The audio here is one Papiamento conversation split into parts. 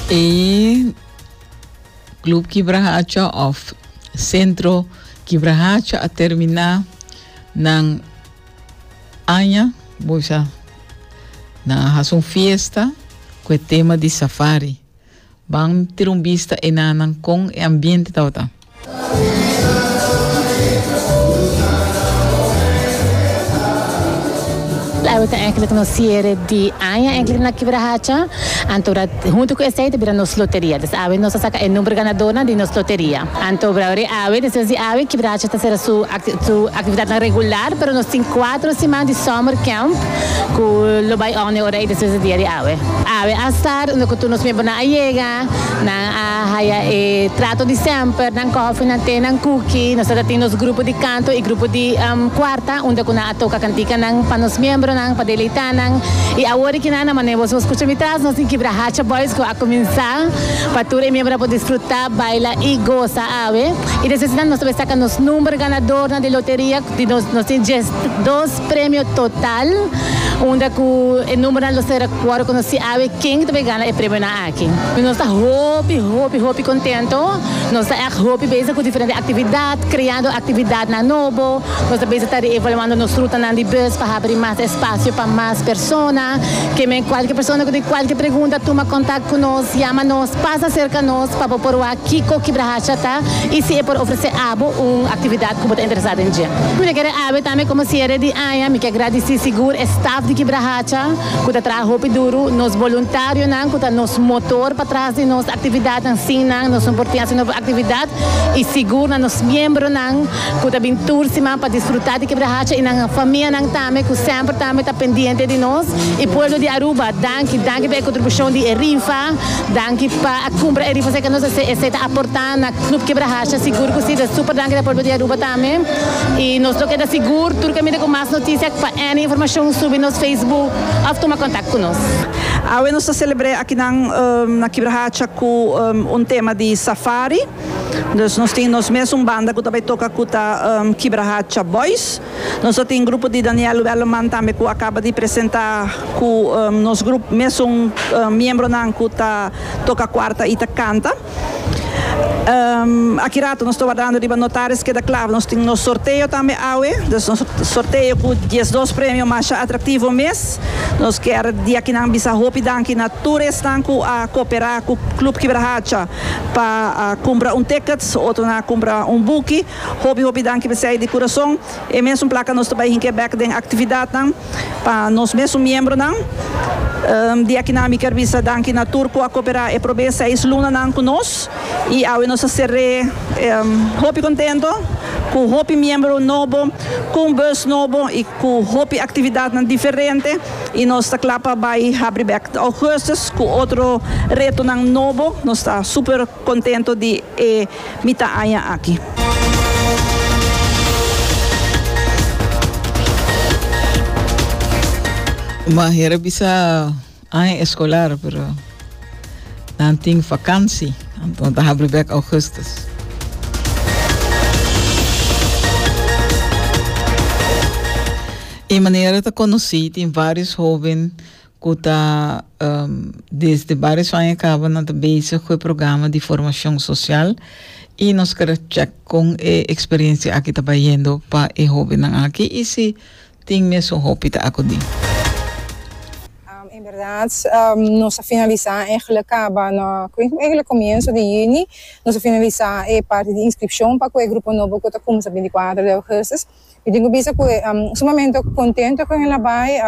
E Club Kibrahacha of Centro Kibrahacha a termina nan aña bosa nan a haci un fiesta cu e tema di safari. Ban tira un bista enanan con e ambiente tabata. Awe ta enkele nos siere di aña enkele na Kibra Hacha, anto bra hunto ku esei ta bira nos loteria. Des awe nos ta saka e number ganadornan di nos loteria. Anto bra ori awe, despues di awe Kibra Hacha ta sera su su aktividatnan regular, pero nos tin kuater siman di summer camp ku lo bai òne ora ei despues di dia di awe. Awe a star unda ku tur nos mierbonan a yega. A haya e trato di semper, nan kofi, nan te, nan kuki. Nos ta tin nos grupo di kanto i grupo di kuarta unda ku nan a toka kantikanan pa nos miembronan pa deleitá nan. I awor ki nan na manera boso a skucha mi tras, nos tin Kibra Hacha Boys ku a kuminsá pa tur e miembronan por disfrutá, baila i gosa awe. I despues di nan nos ta por saka nos number ganadornan di loteria di nos nos tin dies dos premio total unda ku e numbernan lo sera kuor ku nos si awe ken ta por gana e premionan aki. aki. Nos ta hopi, hopi, hopi contento. Nos ta echt hopi bezig cu diferente actividad, creando actividadnan nobo. Nos ta bezig ta reevaluando nos rutanan di bus pa habri mas espacio pa mas persona. Keme cualke persona cu tin cualke pregunta tuma contact cu nos, yama nos, pasa cerca nos pa bo por wak kico Kibra Hacha ta y si e por ofrece abo un actividad cu bo ta interesa den dje. Mi ta kere awe tambe como cierre di aña, mi ke gradici sigur e staff di Kibra Hacha. ku ta traha hopi duru, nos boluntarionan ku ta nos motor pa tras di nos aktividatnan. Sin nan nos no por tin hasi nobo aktividat i sigur na nos miembronan ku ta bin tur siman pa disfrutá di Kebra Hacha i nan famianan tambe ku semper tambe ta pendiente di nos. E pueblo di Aruba, danki. Danki pa e kontribushon di e rifa. Danki pa a kumpra e rifas ei ku nos a hasi. Esei ta aportá na Club Kebra Hacha, sigur ku si. Ta súper danki di e pueblo di Aruba tambe. I nos lo keda sigur tur kaminda ku mas notisia. Any informacion subi nos Facebook of tuma contact cu nos. Awe nos ta celebr'e akinan na Kibrahacha cu un tema di safari. Dus nos tin nos mes un banda cu ta bay toca cu ta Kibrahacha Boys. Nos ta tin grupo di Daniel Welleman tambe cu a caba di presenta cu nos grupo mes un miembronan cu ta toca cuarta y ta canta. Aki rato nos ta wardando riba notaris keda klaar. Nos tin nos sorteo tambe awe. Dus nos sorteo cu diesdos premio masha atractivo mes. Nos kier di akinan bisa hopi danki na tur esnan cu a coopera cu Club Kibrahacha pa a cumpra un tickets, otronan a cumpra un buki. Hopi hopi danki p'esey di curason. E mesun placa nos ta bay hink'e bek den actividadnan. Pa nos mes su miembronan di akinan mi ker bisa danki na tur ku a koperá e probé seis lunanan ku nos. I awe nos a ser'é hopi kontento ku hopi miembro nobo, ku un bus nobo i ku hopi aktividatnan diferente. I nos ta kla pa bai habri bèk augustus ku otro retonan nobo. Nos ta super. Contento di e mita aña aki. Maher a bisa aña escolar pero nan tin vakansi anto ta habri bek augustus. E manera ta conoci tin varios hoben cu ta desde barios aña caba nan ta bezig cu e programa di formacion social y nos keda check con e experiencia aki ta bayendo pa e hobennan aki y si tin mes un hopi ta acudi. En berdad nos a finalisa egle caba na egle comienzo di juni nos a finalisa e parti di inscripcion pa cu e grupo nobo cu ta cuminsa binti cuater de augustus. Mi tin cu bisa cu e sumamente contento cu henda bay,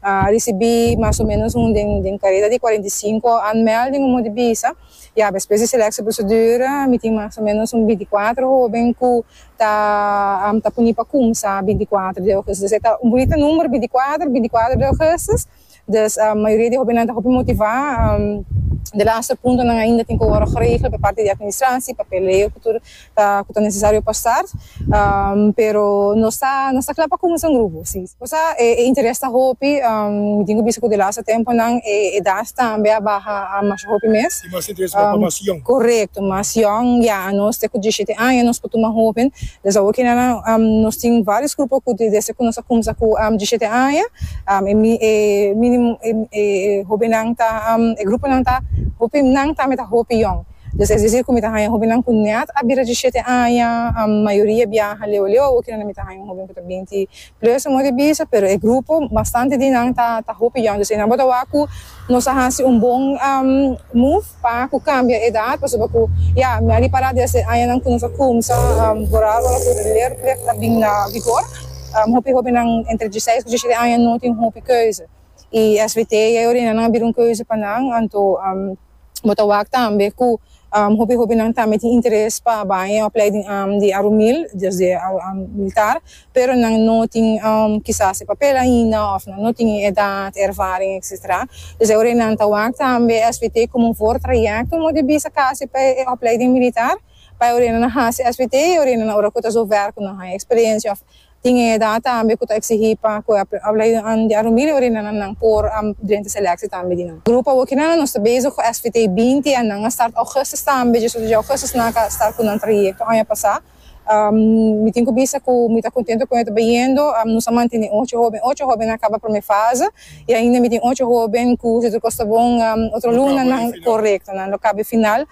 a ricibi mas o menos un den careda di cuarenta y cinco anmel den un monte bisa, ya despues di selectieprocedure mi tin mas o menos un binti cuatro hoben cu ta ta puni pa cumsa binti cuatro di augustus, esey ta un bunita number binti cuatro, binti cuatro di augustus. Dus mayoria di hobennan ta hopi motivá. De laster puntonan ainda tin ku wòrdu geregel pa parti di atministrasie pa peleo ku tur ku ta nesesario pa start. Pero nos ta nos ta kla pa kuminsa un grupo, si. Cosa e interes ta hopi, mi tin ku bisa ku de laster tempunan e edas tambe a baha masha hopi mes. i mas interes bay pa mas yong. Correcto, mas yong ya a nos te cu diecisiete aña nos por tuma hoben, dus awor kende nan nos tin varios grupo cu desde cu nos a cumsa cu diecisiete aña e minimo e hobennan ta e gruponan ta hopi nan tambe ta hopi yong, dus es decir cu mi ta haya hobennan cu net a bira diecisiete aña, mayoria biaha leu leu awor kende nan mi ta haya un hoben cu ta binti Lues un modi bisa pero e grupo bastante di nan ta ta hopi young dus ei nan bo ta wak ku nos a hasi un bon move pa ku kambia edat pasobra ku ya mi a ripará desde añanan ku nos a kumsa borado ora ku ler lef a bin na vigor hopi hopinan entre diseis ku disiete aña no tin hopi keuze i svt ya yo orina nan a bira un keuze pa nan anto. Bo ta wak tambe cu hopi hopinan tambe tin interes pa bay e opleiding di Arumil, dus di militar, pero nan no tin kisas e papel ainda of nan no tin e edad, e ervaring etc. Dus e ora nan ta wak tambe SVT como un voortraject un mode bisa casi pa e opleiding militar, pa e ora nan a haci SVT, e ora nan ora cu ta zo werk cu nan haña experiencia of Tin e edad tambe cu ta exigi pa cu e ablainan di arumbile ori nan nan por a drenta selectie tambe di nan. Grupo awoki nan nos ta bezig cu SVT binti en nan a start augustus tambe dje suda dje augustus nan a ka start cu nan trayecto aña pasa. Mi tin cu bisa cu mi ta contento con e ta bayendo. Nos a mantene ocho hoben, ocho hoben a caba prome fase y ainda mi tin ocho hoben cu si tur cos ta bon otro luna nan, corecto, nan lo caba e final.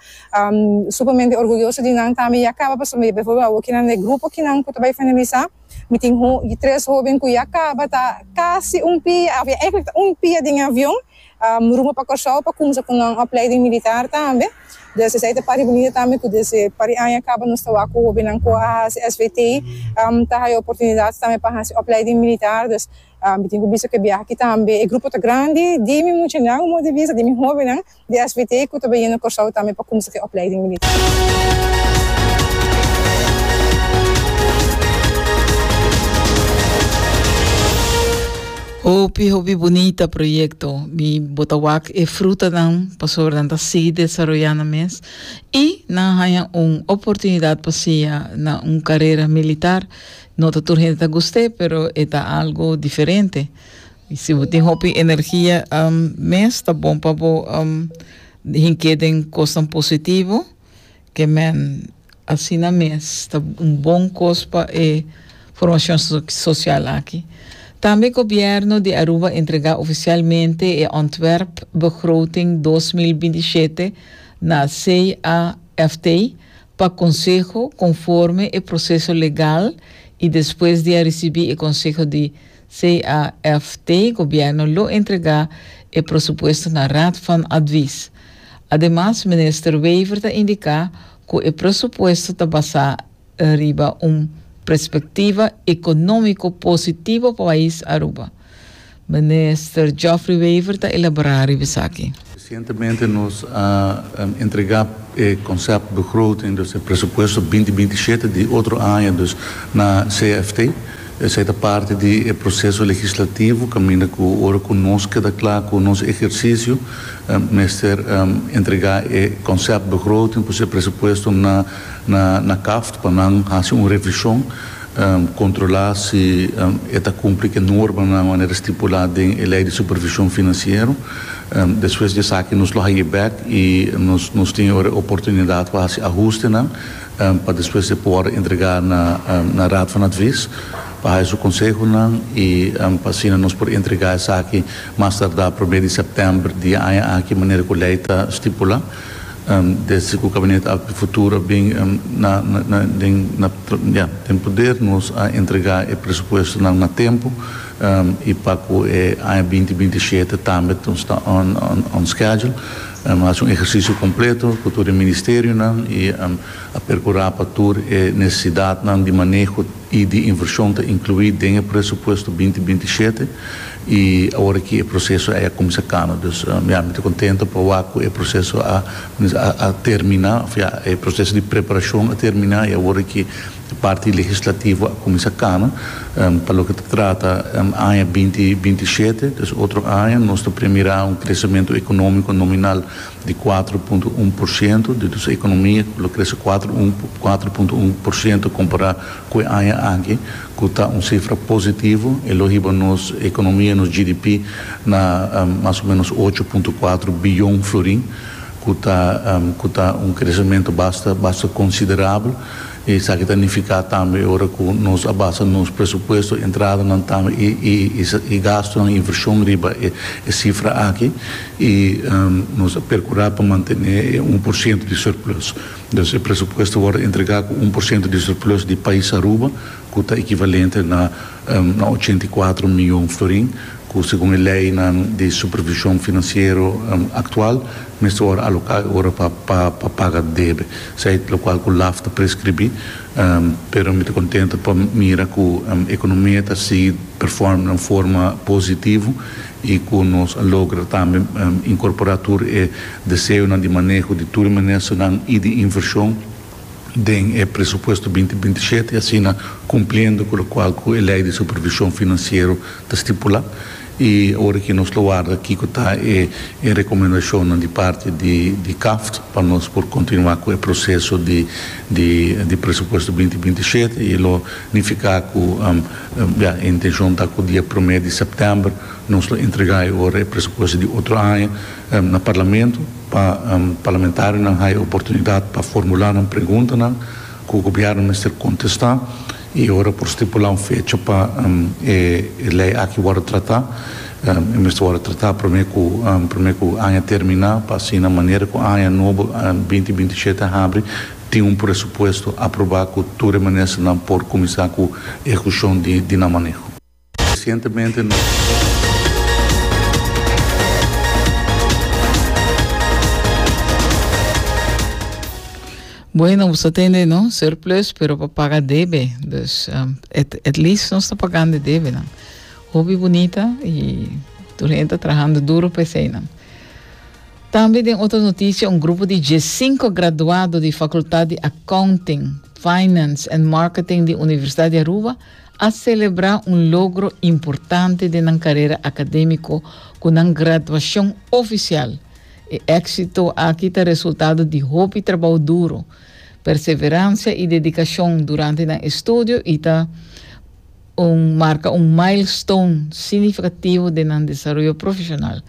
Supermente orguyoso di nan tambe ya kaba pasobra por ejemplo awo kinan den grupo kinan ku ta bai efangelisá mi tin tres hóben ku ya kaba ta kasi un pia òf èigblik ta un pia den e avion rumbo pa Kòrsou pa kuminsá ku nan opleiding militar tambe dus esei ta parti bunita tambe ku desde par e aña kaba nos ta wak ku hóbennan ku a hasi SVT ta haya oportunidat tambe pa hasi opleiding militar dus mi tin ku bista ku e biaha aki tambe e grupo ta grandi di mi muchanan modo di bista di mi hóbennan. di SBT cu ta bini na Corsou tambe pa cuminsa cu e opleiding militar. Hopi hopi bunita proyecto. Mi bo ta wak e frutanan pasobra nan ta sigui desaroyá nan mes i nan haña un oportunidad pa siña na un carera militar. No ta tur hende ta gust'é, pero e ta algo diferente. Y si bo tin hopi energia, mes ta bon pa bo hink'é den cosnan positivo, k'e men asina mes ta un bon cos pa e formacion social aki. Tambe Gobierno di Aruba entrega oficialmente e ontwerp begroting dos mil binti shete na CAFT pa Conseho conforme e proceso legal y despues di a ricibi e conseho di CAFT, Gobierno lo entrega e prosupuesto na Raad van Advies. Ademas Minister Wever ta indica cu e prosupuesto ta basa riba un perspectiva economico positivo pa pais Aruba. Minister Geoffrey Wever ta elabora riba esaki. Resientemente nos a entrega e conceptbegroting, dus e presupuesto binti binti shete di otro aña dus na CFT. Esei ta parti di e proceso legislativo caminda cu ora cu nos keda cla cu nos ehercicio mester entrega e conceptbegroting, pues e presupuesto na CAFT pa nan haci un revision. Kontrolá si e ta kumpli ku e normanan manera stipulá den e Lei di Supervishon Finansiero. Despues di esaki nos lo haña bèk i nos tin ora e oportunidat pa hasi ahustenan pa despues e por entregá na Raad van Advies pa haña su konsehonan i pa asina nos por entregá esaki mas tardá promé di sèptèmber di e aña aki manera ku lei ta stipulá. Desde cu Cabinet Alp di Futuro a bin den poder nos a entrega e presupuestonan na tempo y pa cu e aña binti binti shete tambe nos ta on schedule. A haci un ehercicio completo cu tur e ministerionan y a percura pa tur e necesidadnan di maneho. y di inversion ta inclui den e presupuesto binti binti y shete y aworaky e proceso a ya cuminsa cano dus mi ami ta contento pa wak cu e proceso a a termina of ya e proceso di preparacion a termina y aworaky e parti legislativo a cuminsa cano pa loke ta trata aña binti binti y shete dus otro aña nos ta premira un crecemento economico nominal di kuatro punto un por siento di nos ekonomia ku lo krese kuatro un kuatro punto un por siento kompará ku e aña aki ku ta un sifra positivo e lo hiba nos ekonomia nos GDP na mas o menos ocho punto kuatro biyon florin ku ta ku ta un kresementu basta basta konsiderabel. Esaki ta nifiká tambe ora ku nos a basa nos presupuesto, entradanan tambe i gastunan, invershon riba e sifra aki i nos a perkurá pa mantené e un por siento di surplus. Dus e presupuesto wòrdu entregá ku un por siento di surplus di pais Aruba ku ta ekivalente na ochenta i kuatro mion florin ku segun e leinan di supervishon finansiero aktual mester wòrdu aloká e ora pa paga debe. Seit lokual ku laf ta preskribí, pero mi ta kontento pa mira ku ekonomia ta sigui perform na un forma positivo i ku nos a logra tambe inkorporá tur e deseonan di maneho di tur e ministernan i di invershon den e presupuesto binti binti shete, asina kumpliendo ku lokual ku e lei di supervishon finansiero ta stipulá. I ora ki nos lo warda kiko ta e e rekomendashonnan di parti di di CAFT pa nos por kontinuá ku e proseso di di di presupuesto binti binti i shete i lo nifiká ku ya e intenshon ta ku dia promé di sèptèmber nos lo entregá e ora e presupuesto di otro aña na Parlamento pa parlamentarionan haya oportunidat pa formulá nan preguntanan ku Gobièrnu mester kontestá. I ora por stipulá un fecha pa e lei aki wòrdu tratá, e mester wòrdu tratá promé ku promé ku aña terminá pa asina manera ku aña nobo binti binti shete a habri tin un presupuesto aprobá ku tur e ministernan por kuminsá ku ehekushon di nan maneho. Resientemente Bueno, nos ta tende no surplus, pero pa paga debe. Dus um, at, at least nos ta pagando debe. No? Hobby bonita y tu gente trabajando duro para ese. No? También den otra noticia, un grupo de 15 graduados de Facultad de Accounting, Finance and Marketing de Universidad de Aruba a selebrá un logro importante den nan karera akadémiko ku nan graduashon ofisial. E éksito aki ta resultado di hopi trabou duro, perseveransia i dedikashon durante nan estudio i ta un marka un milestone signifikativo den nan desaroyo profeshonal.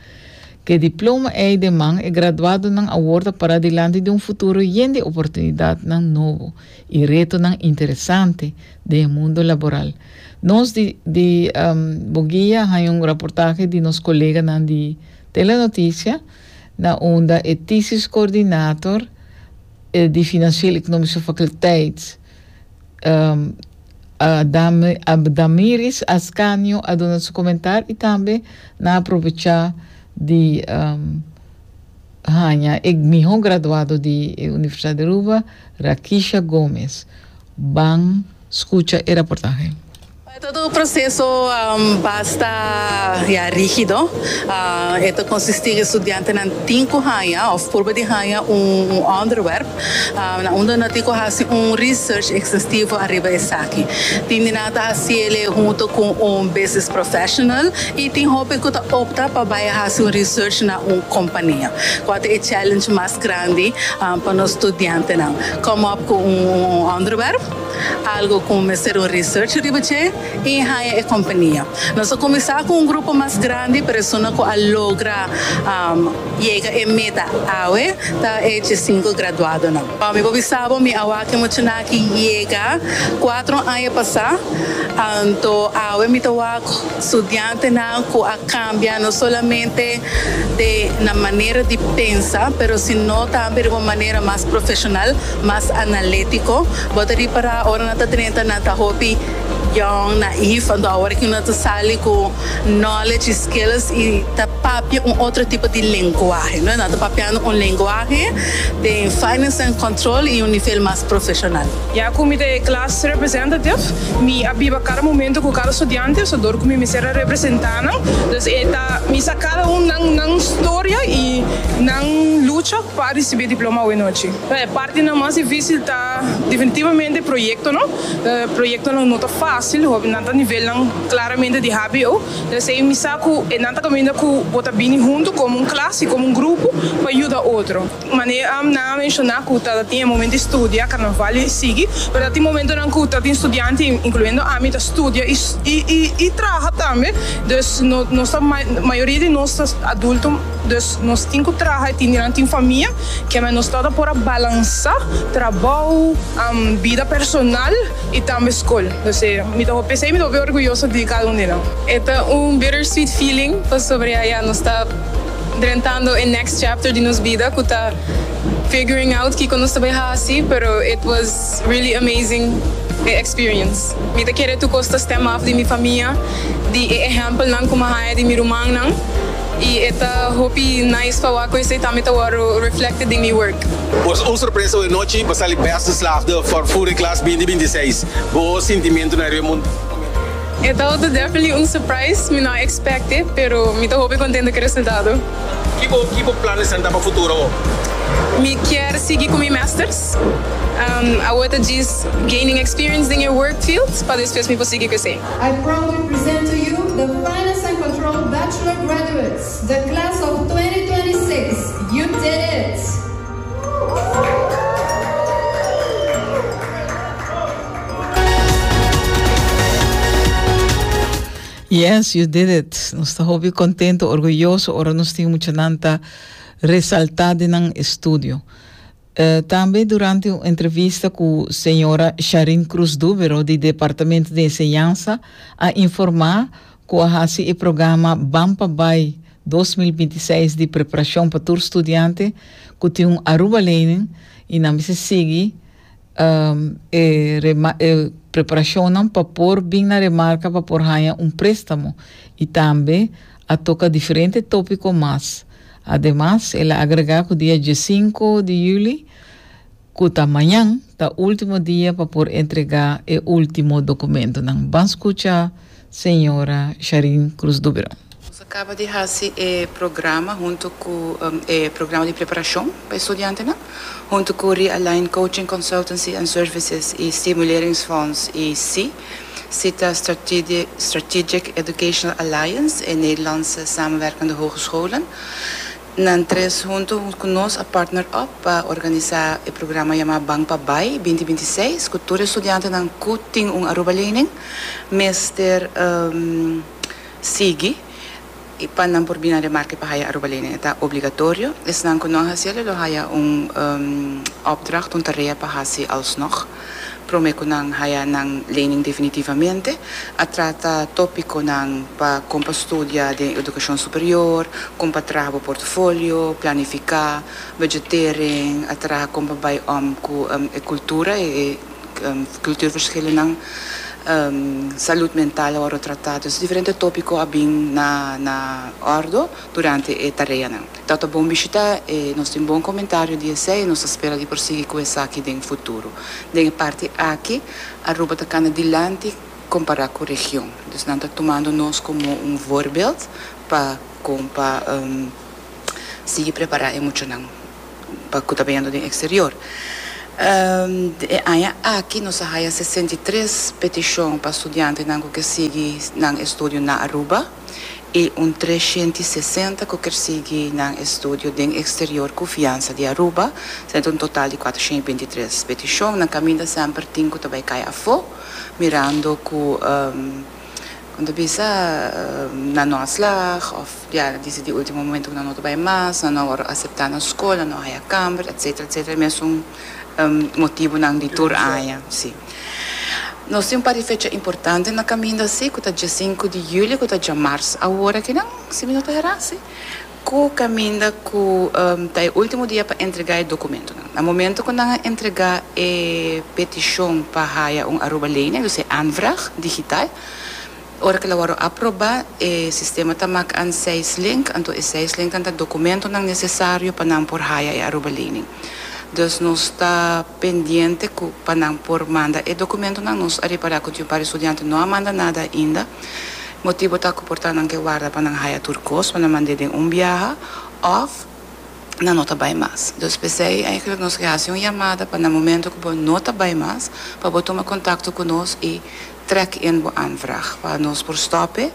K'e diploma ei den man, e graduadonan awor ta pará dilanti di un futuro yen di oportunidatnan nobo. I retonan interesante den e mundo laboral. Nos di di Boguia a haña un raportahe di nos koleganan di Telenoticia na unda e Thesis Coordinator di Financieel Economische Faculteit, Damiris Ascanio a duna su comentar i tambe nan a aprovecha di Haña e miho graduado di e Universidad di Aruba, Rakisha Gomez. Ban scucha e raportahe. E ta un proceso basta ya rigido. E ta consistí cu e studiantenan tin cu haña of purba di haña un onderwerp. Na unda nan tin ku hasi un research ekstenstivo ariba esaki. Tin di nan ta hasi el'e hunto ku un business professional i tin hopi ku ta opta pa bai a hasi un research na un kompania. Kua ta e challenge mas grandi pa nos studiantenan? Kom op ku un onderwerp, algu ku mester un research riba dje i haña e kompania. Nos a kuminsá ku un grupo mas grandi, persona ku a logra. Yega e meta awe ta e chesinku graduadonan. Pa mi por bisabo mi awaki muchanan aki yega kuatro aña pasá, anto awe mi ta wak studiantenan ku a kambia no solamente den nan manera di pensa pero sino tambe riba un manera mas profeshonal, mas analétiko. Bo ta ripará ora nan ta trenta nan ta hopi yòn, naïf, anto awor aki nan ta sali ku. Knowledge y skills y ta papia un otro tipo di lenguahe. No ta papiando un lenguahe den finance and control y un nivel mas profesional. Ya cu mi ta e class representative, mi a biba cada momento cu cada studiante, so dor cu mi mester a representa nan. Dus e ta bisa cada un nan nan storia y nan lucha pa ricibi e diploma awe nochi. E partinan mas dificil ta definitivamente e proyectonan. Proyectonan no ta facil, hopi nan ta nivelnan. Claramente di hbo, resei mi sa cu e nan ta caminda cu bo ta bini hunto como un clas y como un grupo pa yuda otro. Mane nan a menciona cu ta tin e momento di studia, carnaval y sigui, pero ta tin momentonan cu ta tin studiantenan, incluyendo ami, ta studia y traha tambe. Dus nos ta, mayoria di nos ta adulto, dus nos tin cu traha y tin nan tin famia, kiaman nos no ta por a balansa trabou, bida personal. I tambe skol. Nos sé, mi ta por pensa i mi ta por bin orguyoso di kada un di nan. E ta un bittersweet feeling pasobra ya ya nos ta drentando e next chapter di nos bida ku ta figuring out kiko nos ta bai hasi, pero it was really amazing e experience. Mi ta kere tur kos ta stem af di mi famia, di e ehèmpelnan ku mi a haña di mi rumannan i e ta hopi nice pa wak ku esei tambe ta wòrdu reflected den mi work. Por un sorpresa oe nochi bo sali best geslaagde for Fury Class binti binti seis. Bo sintimentu na riba mont'e momento. E ta oto definitely un surprise, mi no a expect'e, pero mi ta hopi contento cu e resultado. Ki bo ki bo plan esnan ta pa futuro awo? Mi kier sigui cu mi masters. Awo ta djis gaining experience den e work field pa despues mi por sigui cu esey. I proudly present to you the Finance and Control Bachelor graduates. The Class of 2026, you did it! Yes, you did it! Nos ta hopi contento, orguyoso ora nos tin muchanan ta resalta den nan estudio. Tambe durante un entrevista ku señora Sharin Cruz Duvero di Departamento di Enseñansa a informá ku a hasi e programa Ban pa Bai dos mil binti seis di preparashon pa tur studiante ku tin un Arubalening i nan mester sigui e e preparashonnan pa por bin na remarka pa por haña un préstamo i tambe a toca diferente topico mas. Ademas el a agrega cu dia diesinco di juli, cu ta mañan, ta ultimo dia pa por entrega e ultimo documentonan. Ban scucha Sra. Sharine Cruz Duberon. Nos a caba di haci e programa hunto cu e programa di preparacion pa e studiantenan, hunto cu Realign Coaching Consultancy and Services y Stimuleringsfonds y si. Si ta Strategic Educational Alliance, e Nederlandse Samenwerkende Hogescholen. Nan tres hunto ku nos a partner up pa organisa e programa yama Ban pa Bai binti binti i seis ku tur e studiantenan ku tin un Aruba lening mester sigui. E pa nan por bina remarke pa haya Aruba Lane e ta obligatorio. Esnan ku no a hasielo lo haya un opdracht, un tarea pa hasi alsnog. Prome ku nan haya nan lening definitivamente, a trata topikonan pa kon pa studia den edukashon superior, kon pa traha bo portofolio, planifiká, budgetering, a traha kon pa bai om ku e kultura, e Kulturverschillennan, Salud mental a wòrdu tratá. Dus diferente tópiko a bin na òrdu durante e tareanan. Tòg ta bon bishitá e nos tin bon komentario di esei i nos ta spera di por sigui ku esaki den futuro. Den e parti aki Aruba ta kanda dilanti kompará ku region. Dus nan ta tumando nos komo un voorbeeld pa kon pa sigui prepará e muchanan. pa cu ta beyendo den exterior. E aña aki nos a haya sesenta i tres peticion pa studiantenan cu kier sigui nan estudio na Aruba y un treshent i sesenta cu kier sigui nan estudio den exterior cu fiansa di Aruba. Esei ta un total di cuatroshent i binti tres peticion. Nan caminda semper tin cu ta bay cay afo mirando cu. Con ta bisa na no a slag of ya a dici di ultimo momento cu nan no ta bay mas, nan no a wordo acepta na scol, nan no a haya camber, etcetera, etcetera. E mesun motibonan di tur aña, si. Nos tin un par di fecha importante na caminda, si, cu ta dje sinku di julio, cu ta djamarz awor akinan, si mi no ta hera, si. Ku kaminda ku ta e último dia pa entregá e dokumentonan. Na momento ku nan a entregá e petishon pa haya un aruba-lening, dus e aanvraag, digital, ora ku el a wòrdu aprobá, e sistema ta mak an seis link, anto e seis linknan ta dokumentonan nesesario pa nan por haya e aruba-lening. Dus nos ta pendiente ku pa nan por manda e dokumentonan. Nos a repará ku Diumpari Studiante no a manda nada ainda. Motibu ta ku por ta nan ke warda pa nan haya tur kos pa nan mand'é den un biaha òf nan no ta bai mas. Dus p'esei eigenlijk nos ke hasi un yamada pa na momentu ku bo no ta bai mas pa bo tuma kontakto ku nos i trèk in bo aanvraag pa nos por stòp'é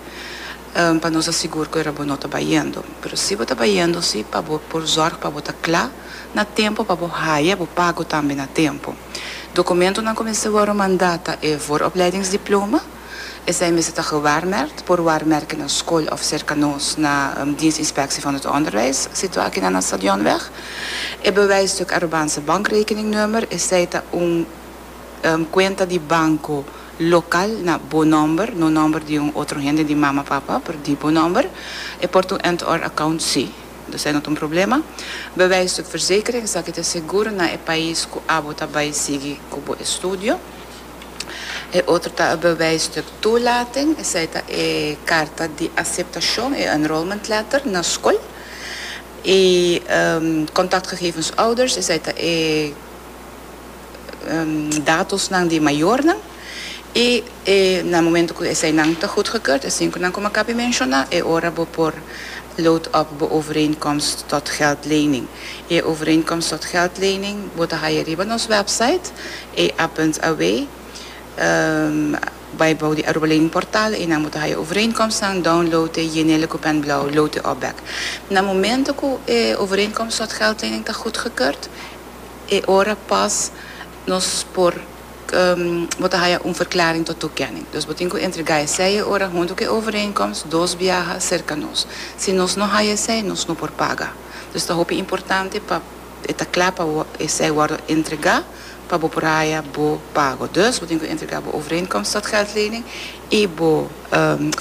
pa nos ta sigur ku era bo no ta bai yendo. Pero si bo ta bai yendo si pa bo por zòrg pa bo ta kla na tempu pa bo haya bo pago tambe na tempu. Dokumentunan ku mester wòru mandá ta e vooropleidingsdiploma, Esei mester ta gewaarmerkt por ware merke na skol of serka nos na Dienstinspectie van het Onderwijs, situa akinan na Stadionweg. E bewijsstuk aroban se bankrekeningnummer, esei ta un kuenta di banko lokal na bo nòmber, no nòmber di un otro hende, di mama, papa, pero di bo nòmber. E por ta un end or account si, dus ei no ta un problema. Bewijsstuk verzekering, esaki ta e seguro na e pais ku abo ta bai sigui ku bo estudio. E otro ta e bewijs di toelating, esei ta e karta di aseptashon, e enrollment letter, na skol. E kontaktgegevens ouders, esei ta e datosnan di mayornan. I e na momento ku eseinan ta gutgekeurd, asin ku nan koma akaba di menshoná, e ora bo por load up bo overeenkomst tot geldlening. I e overeenkomst tot geldlening bo ta haya riba nos wèpsait, E Athens awe bai bou di Aruba Lening Portal y nan bo ta haya overeenkomstnan down lote Jenele ku pen blauw lote op bek. Na momento ku e overeenkomst sot geldlening ta goedgekeurd e ora pas nos por bo ta haya un verklaring tot toekenning. Dus bo tin ku entrega esey e ora hunto ku e overeenkomst dos biaha serka nos. Si nos no haya esey nos no por paga. Dus ta hopi importante pa e ta kla pa esey wordo entrega. pa bo por haya bo pago. Dus bo tin ku entrega bo overeenkomst tot geldlening i bo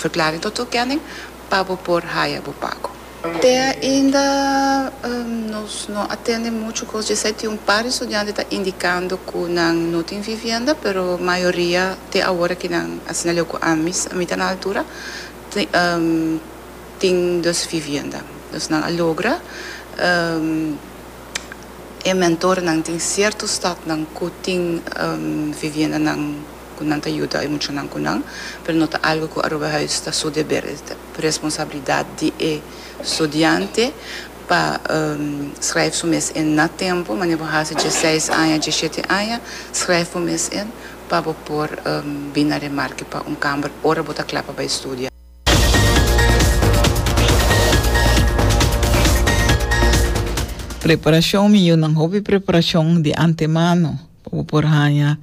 verklaring tot toekenning pa bo por haya bo pago. Te ainda nos no a tende muchu kos dje esei. Tin un par di studiante ta indikando ku nan no tin vivienda, pero mayoria te awor aki nan, asina leu ku ami a mita na altura, tin dus vivienda. Dus nan a logra. e mentornan tin cierto stadnan cu tin viviendanan cu nan ta yuda e muchanan cu nan, pero no ta algo cu Aruba Huis ta su deber, es ta responsabilidad di e studiante pa schrijf su mes en na tempo, manera bo haci dje seis aña, dje shete aña, schrijf bo mes en pa bo por bina remarke pa un camber ora bo ta cla pa bay studia. Preparashon, Mi yu nan hopi preparashon di antemano pa bo por haña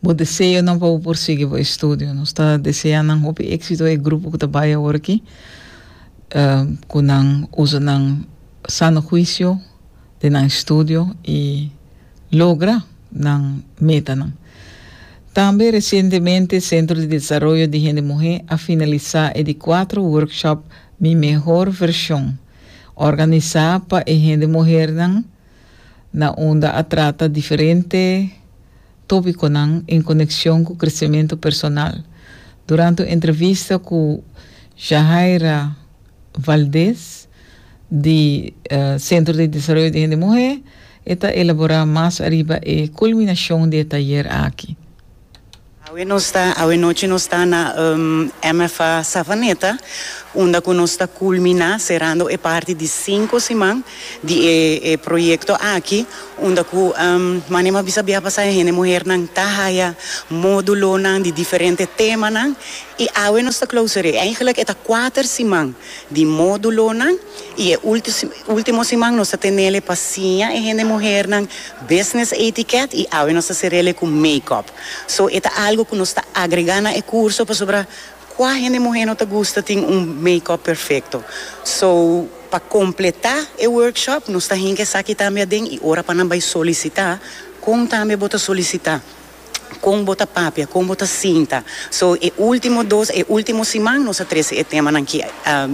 bo deseonan pa bo por sigui bo estudio. Nos ta desea nan hopi éksito e grupo ku ta bai awor aki, eh, ku nan usa nan sano huisio den nan estudio i. logra nan metanan. Tambe resientemente Centro di Desaroyo di Hende Muhé a finalisá e di kuater workshop Mi Mehor Versión, organisá pa e hende muhernan na unda a trata diferente tópikonan en konekshon ku kresementu personal. Durante un entrevista ku Jahaira Valdés, di Centro di Desaroyo di Hende Muhé, e ta elaborá mas ariba e kulminashon di e tayer aki. Awe nos ta, awe nochi nos ta na MFA Savaneta unda ku nos ta kulminá serando e parti di sinku siman di e e proyekto aki unda ku Manny a bisa biaha pasá e hende muhernan ta haya módulonan di diferente temanan i awe nos ta klausur'é. Eigenlik e ta kuater siman di módulonan i e último siman nos ta tenele pa siña e hende muhernan business etiquette i awe nos ta serele ku makeup. So e ta algu ku nos ta agregá na e kurso pasobra kua hende muher no ta gusta tin un makeup perfekto. So pa kompletá e workshop nos ta hinka esaki tambe aden i ora pa nan bai solisitá kon tambe bo ta solisitá. kon bo ta papia, kon bo ta sinta. So e ultimo dos, e ultimo siman nos a trese e temanan aki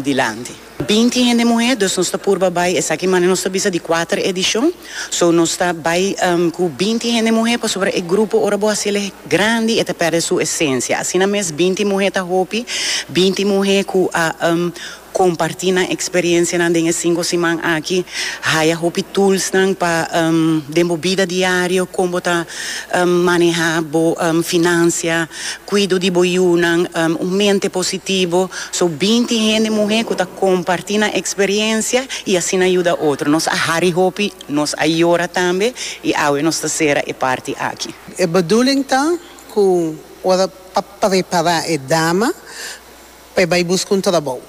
dilanti. Binti hende muhé, dus nos ta purba bai esaki manera nos ta bisa di kuater edishon. So nos ta bai ku binti hende muhé pasobra e grupo ora bo hasiel e grandi e ta perde su esensia. Asina mes binti muhé ta hopi, binti muhé ku a. Kompartí nan eksperensianan den e sinku siman aki. Haya hopi tulsnan pa den bo bida diario, kon bo ta manehá bo finansia, kuido di bo yunan, un mente positivo. So, binti hende muhé ku ta kompartí nan eksperensia i asina yuda otro. Nos a hari hopi, nos a yora tambe i awe nos ta sera e parti aki. E bedoeling ta ku ora pa prepará e dama. Pa e bai busca un trabou.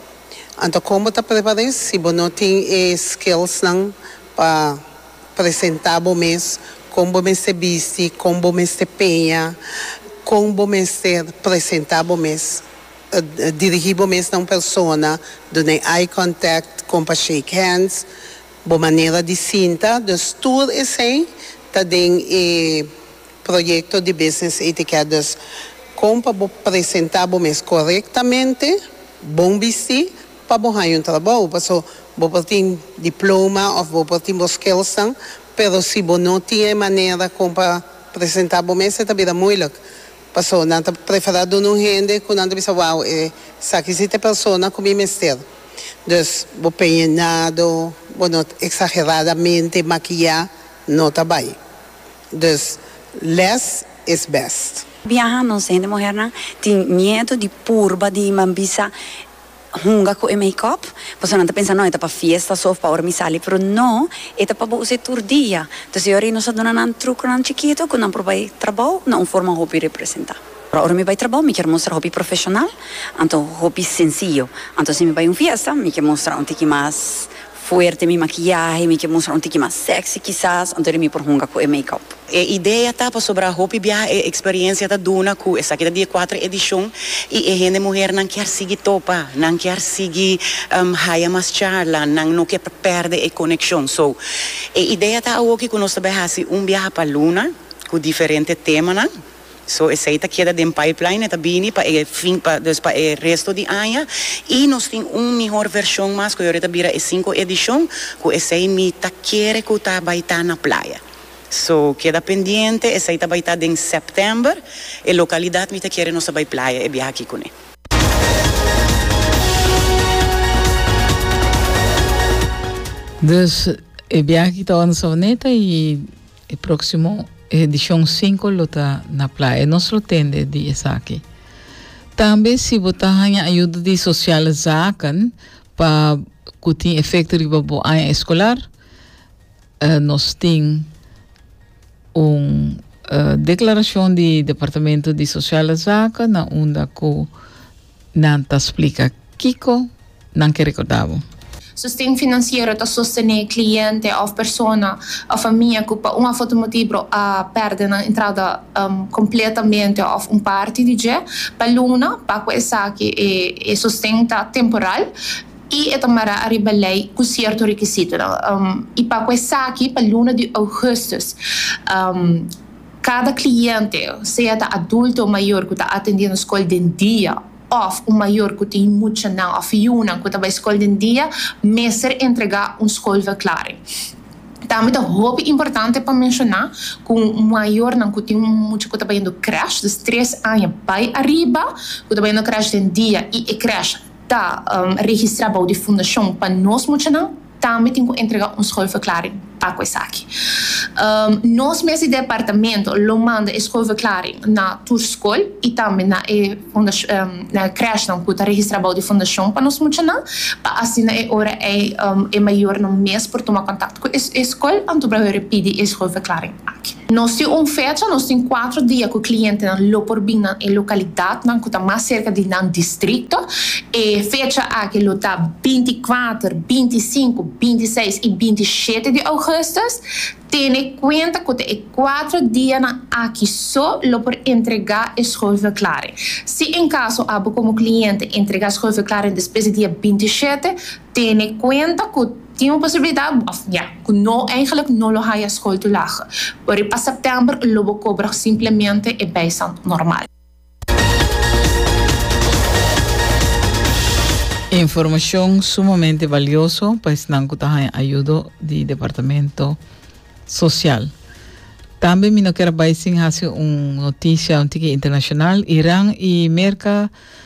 Anto con bo ta prepar'é si bo no tin e skills nan pa presenta bo mes, con bo mester bisti, con bo mester peña, con bo mester presenta bo mes, dirigi bo mes na un persona, dun'é eye contact, con pa shake hands, bo manera di sinta, dus tur esei ta den e Proyecto di Business Etiquette dus kon pa bo presenta bo mes korektamente, bon bisti pa bo haña un trabou paso bo por tin diploma of bo por tin bo skillsnan pero si bo no tin e manera kon pa presenta bo mes e ta bira moeilijk paso nan ta prefera duna un hende ku nan ta bisa wow esaki si ta e persona ku mi mester dus bo peñenado bo no exageradamente makiya no ta bai. Dus less is best. Biaha nos hende muhernan tin miedu di purba di mi bisa hunga cu e makeup pasobra nan ta pensa no e ta pa fiesta so of pa ora mi sali pero no e ta pa bo usa e tur dia entonces yo ahí nos a duna nan truconan chikito cu nan por bay trabao na un forma hopi representa ora ora mi bay trabao mi kier mustra hopi profesional anto hopi sencillo anto si mi bay un fiesta mi ke mustra un tiki mas fuerte mi makiyahe, mi ke mustra un tiki mas sexy kisas, anto de mi por hunga ku e makeup. E idea ta pasobra hopi biaha e eksperiencia ta duna ku esaki ta di e kuater edishon i e hende muhernan kier sigui topa, nan kier sigui haya mas charla, nan no kier pèrdè e konekshon. So, e idea ta awoki ku nos ta bai hasi un biaha pa luna ku diferente temanan. So esei ta keda den pipeline, e ta bini pa e fin, pa dus pa e resto di aña, i nos tin un mihor vershon mas ku yori ta bira e sinku edishon, ku esei mi ta kere ku ta bai ta na playa. So keda pendiente, esei ta bai ta den sèptèmber, e lokalidat mi ta kere nos ta bai playa e biaha aki kuné. Dus e biaha aki ta bai na Savaneta i. E próksimo edishon sinku lo ta na playa. Nos lo tende di esaki. Tambe si bo ta haña ayuda di Sosiale Zaken pa ku tin efekto riba bo aña eskolar, nos tin un deklarashon di Departamento di Sosiale Zaken na unda ku Nan ta splica kico nan ke recorda bo. Sosten financiero ta sostene cliente of persona of famia cu pa un of otro motibro a perde nan entrada completamente of un parti di dje pa luna. Pa cu esaki e sosten ta temporal y e ta mara ariba ley cu cierto requisitonan y pa cu esaki pa luna di augustus Kada kliente, sea ta adulto o mayor ku ta atendé nos skol den dia òf un mayor ku tin muchanan òf yunan ku ta bai skol den dia, mester entregá un skolverklaring. Tambe ta hopi importante pa menshoná ku mayornan ku tin un mucha ku ta bayendo krèsh, dus tres aña bai ariba, ku ta bayendo krèsh den dia i e krèsh ta registrá bou di fundashon pa nos muchanan, Tambe tin cu entrega un schoolverklaring pa cu esaki. Nos mes di departamento lo manda e schoolverklaring na tur school y tambe na e crèshnan cu ta registra bou di fundacion pa nos muchanan, pa asina e ora ey e mayornan mes por tuma contacto cu e school anto por a hore pidi e schoolverklaring. Nos tin un fecha, nos tin cuatro dia cu clientenan lo por bin na e localidadnan cu ta mas cerca di nan districto. E fecha aki lo ta binti kuater, binti sinku, binti seis y binti shete di augustus. Tene cuenta cu ta e cuatro dianan aki so lo por entrega e schoolverklaring. Si en caso abo como cliente entrega schoolverklaring despues di dia binti shete, Tene kuenta ku tin un posibilidat, òf ya, ku no, eigenlik no lo haya skol tu laga. Por e pa sèptèmber lo bo kobra simplemente e bijstand normal. Informashon sumamente balioso pa esnan ku ta haña ayudo di Departamento Sosial. Tambe mi no kier a bai sin hasi un notisha un tiki internashonal. Iran i Merka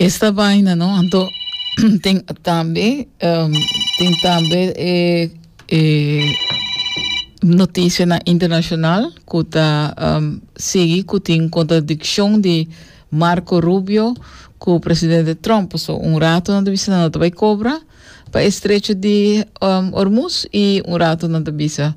Esta vaina no anto tin tambe um, tin tambe e e noticia na internacional ku ta um, sigui ku tin contradiccion di Marco Rubio ku presidente Trump so un rato nan ta bisa nan ta bai cobra pa estrecho di um, Hormuz y un rato nan ta bisa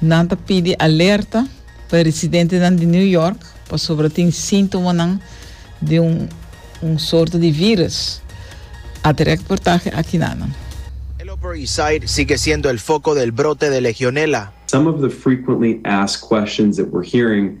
Nan ta pidi alerta pa residentenan di New York pasobra tin sintomanan di un un sorto di vírùs, a trek reportahe aki na nan. El Upper East Side sigue siendo el foco del brote de Legionela. Some of the frequently asked questions that we're hearing